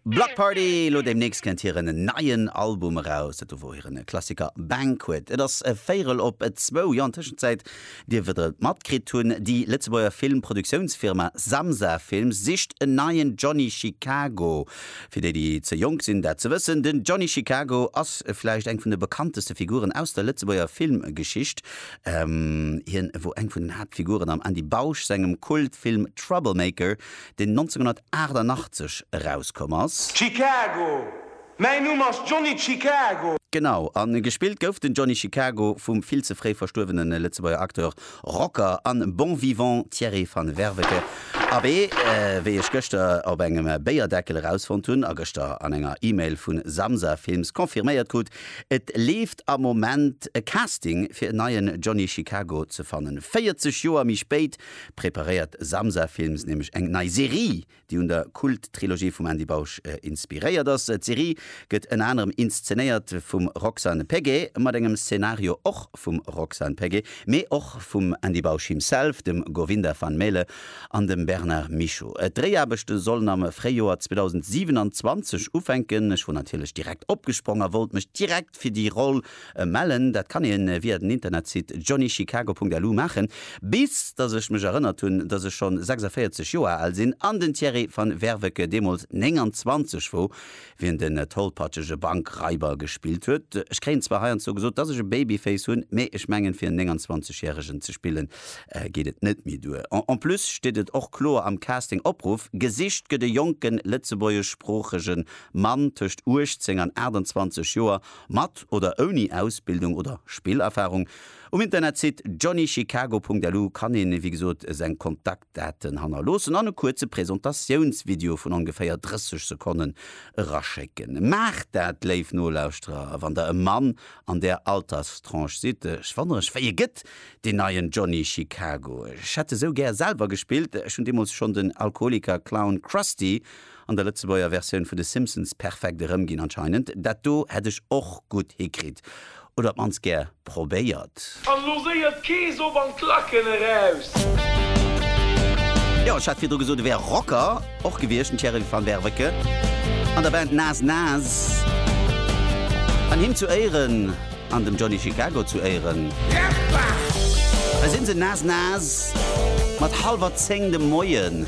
Bloc Party, elo deemnächst kënnt hiren neien Album eraus. Dat do wor hiren Klassiker Banquet. Et ass véierel op zwou. Jo, an Tëschenzäit dierft der et matkritt hunn, déi Lëtzebuerger Film Produktiounsfirma Samsa Films sicht en neien Johnny Chicago. Fir déi, déi ze jonk sinn dat ze wëssen, den Johnny Chicago ass vläicht eng vun de bekannteste Figuren aus der Lëtzebuerger Filmgeschicht. Hien wor eng vun den Haaptfiguren am Andy Bausch sengem Kultfilm Troublemaker, deen 1988 erauskomm ass. Chicago! Mäin Numm ass Johnny Chicago! Genau, a gespillt gouf den Johnny Chicago vum vill ze fréi verstuerwene Lëtzebuerger Acteur, Rocker a Bon Vivant Thierry Van Werveke, abee, wéi ech gëschter op engem Béierdeckel erausfonnt hunn a gëschter an enger E-Mail vu Samsa Films confirméiert krut, et leeft am Moment e Casting fir en neien Johnny Chicago ze fannen. 40 Joer méi spéit preparéiert Samsa Films nämlech eng nei Serie, déi un der Kult-Trilogie vum Andy Bausch inspiréiert ass. D'Serie gëtt ënner anerem inszenéiert vum Roxane Peguet, mat engem Szenario och vum Roxane Peguet, mee och vum Andy Bausch himself, dem Govinda van Melle an dem Bernard Michaux. D'Dréiaarbechte sollen am Fréijoer 2027 ufänken. Ech wor natierlech direkt opgesprong a wollt mech direkt fir déi Roll Mellen, dat kann een via den Internetsite johnnychicago.lu maachen. Bis dass ech mech erënnert hunn, dass ech schonn 46 Joer al sinn an den Thierry van Werveke deemools 29 wou wien den tollpatschege Bankraiber gespillt huet. Ech kréien zwar heiandsdo gesot, dass ech e Babyface hunn, mee ech mengen fir en 29 järegen ze spillen geet et net méi duer. En plus steet et och kloer am Casting Opruff, gesicht gëtt e jonken lëtzebuergeschsproochege Mann tëscht 18 an 28 Joer Mat oder ouni Ausbildung oder Spillerfahrung, um Internetsite johnnychicago.lu kann ee wéi gesot seng Kontaktdaten hannerloossen an e kuerze Präsentatiounsvideo vun ongeféier 30 Sekonnen eraschécken. Maacht dat, léif Nolauschterer, wann der e Mann an där Alterstranche sidd. Ech wonnere ech, wéi e gëtt, deen neien Johnny Chicago? Ech hätt esou gär selwer gespillt. Ech hunn deemools schonn den Alkoholiker Clown Krusty An der Lëtzebuerger Versioun vun de Simpsons perfekt erëm ginn anscheinend. Dat do hätt ech och gutt hikritt, oder op d'mannst gär probéiert. An lo séiert Kees op an d'Lacken eraus! Jo, ech hat virdru gesot e wär Rocker och gewiescht, den Thierry Van Werveke an der Band Nas Nas. An him zu Éieren an dem Johnny Chicago zu Éieren, hei sinn se Nas Nas mat hallwer zéng de Moien.